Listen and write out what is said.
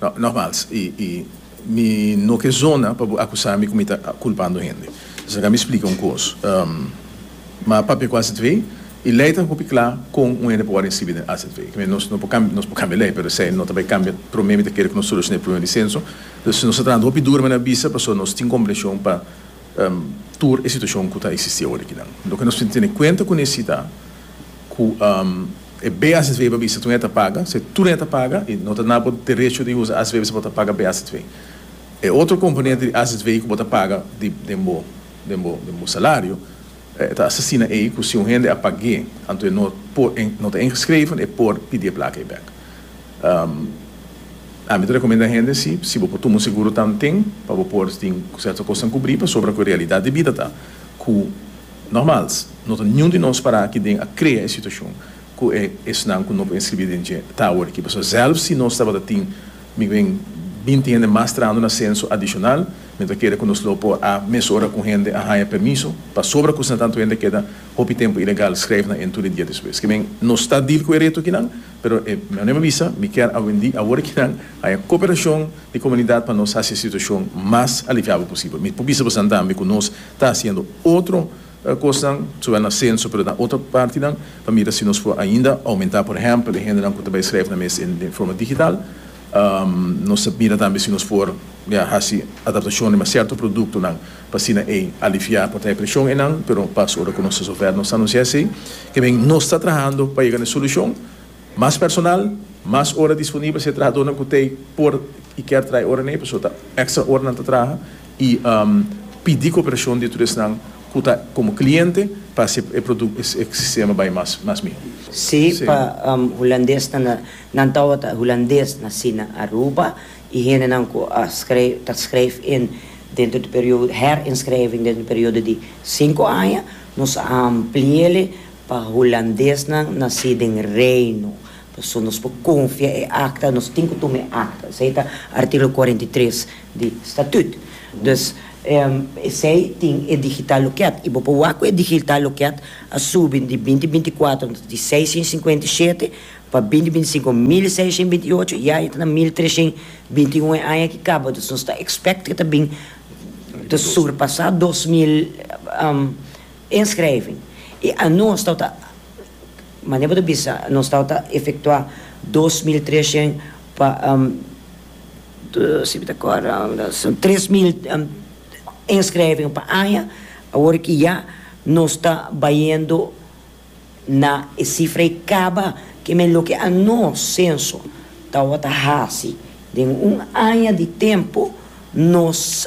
Nogmals, i mi no ke zona pa bo akusá mi ku mi ta kulpando hende. Esnan ka mi splika un kos. Ma papia ku AZV, e lei ta hopi kla kon un hende por wòrdu inskribi den AZV. Ke men, nos por kambia lei, pero esei no ta bai kambia. Promé mi ta kere ku nos solushoná e prubema di senso. Dus nos ta trahando hopi duru, mi a bisa, pasobra nos tin komprenshon pa tur e situashon ku ta eksistí aworekinan. Loke nos tin tene kuenta kuné si ta. ku e BACTV bo a bisa tune ta paga, se tune ta paga i no ta na bo derecho di usa ACTV bisa bo ta paga BACTV. E otro komponente di ACTV ku bo ta paga di den bo den bo den bo salario e ta asina ei ku si un hende a pag'é anto e no por e no ta ingeschreven e por pidi e plaka ei bèk. Ami ta rekomenda hende si si bo por tuma un seguro tanten pa bo por tin serto kosnan kubrí pasobra ku e realidat di bida ta ku Normals, no ta niun di nos para aki den a krea e situashon ku e esnan ku no por inskribí den dje ta awor aki. Pasobra sèlf si nos tabata tin migren binti hende mas trahando na senso adishonal, mi no ta kere ku nos lo por a mesora ku hende a haña permiso pasobra ku esnan tantu hende keda hopi tempu ilegal, skrèf nan en tur e dia despues. Kiben, nos ta dil ku e reto akinan, pero e manera mi a bisa, mi kier awendí awor akinan haña koperashon di komunidat pa nos hasi e situashon mas aliviabel posibel. Mi por bisa boso nan tambe ku nos Ta hasiendo otro kosnan, zowel na senso pero na otro partinan, pa mira si nos por ainda oumentá, por ehèmpel, e hendenan ku ta bai skrèf nan mes den forma digital. Nos ta mira tambe si nos por hasi adaptashonnan riba sierto produktonan pa asina ei aliviá por traha e preshon einan, pero pas ora ku nos ta sofer nos ta anunsiá esei. Ke men, nos ta trahando pa yega na e solushon, mas personal, mas ora disponibel, si e trahadónan ku ta por i kèr traha e oranan ei, pasobra ta èkstra oranan ta traha. y pidi cooperacion di tur esnan cu ta como cliente pa haci e producto, e sistema bay mas mas miho. Sí, pa hulandesnan na, nan tabata hulandes naci na Aruba y hendenan cu a schrijf, ta schrijf in dentro di periodo, herinschrijving dentro di periodo di cinco aña, nos a ampliele pa hulandesnan naci den Reino, Pasobra nos por konfia e akta, nos tin ku tuma e akta. Esei ta artíkulo kuarenta i tres di statüt. Dus, esei tin e digital lokeat i bo por wak ku e digital lokeat a subi di binti binti kuater di seishen sinkuenta i shete pa binti binti sinku mil i seishen binti i ocho. Ya e ta na mil treshen binti i un e aña ki kaba. Dus nos ta ekspèkt ku ta bin ta surpasá dos mil. Inschrijving e anons tawata a Manera bo ta bisa nos tawata a efektuá dos mil treshent pa si bo ta kòrda tres mil inschrijving pa aña awor ki ya nos ta bayendo na e sifra e kaba ke men loke anons senso tawata hasi den un aña di tempu nos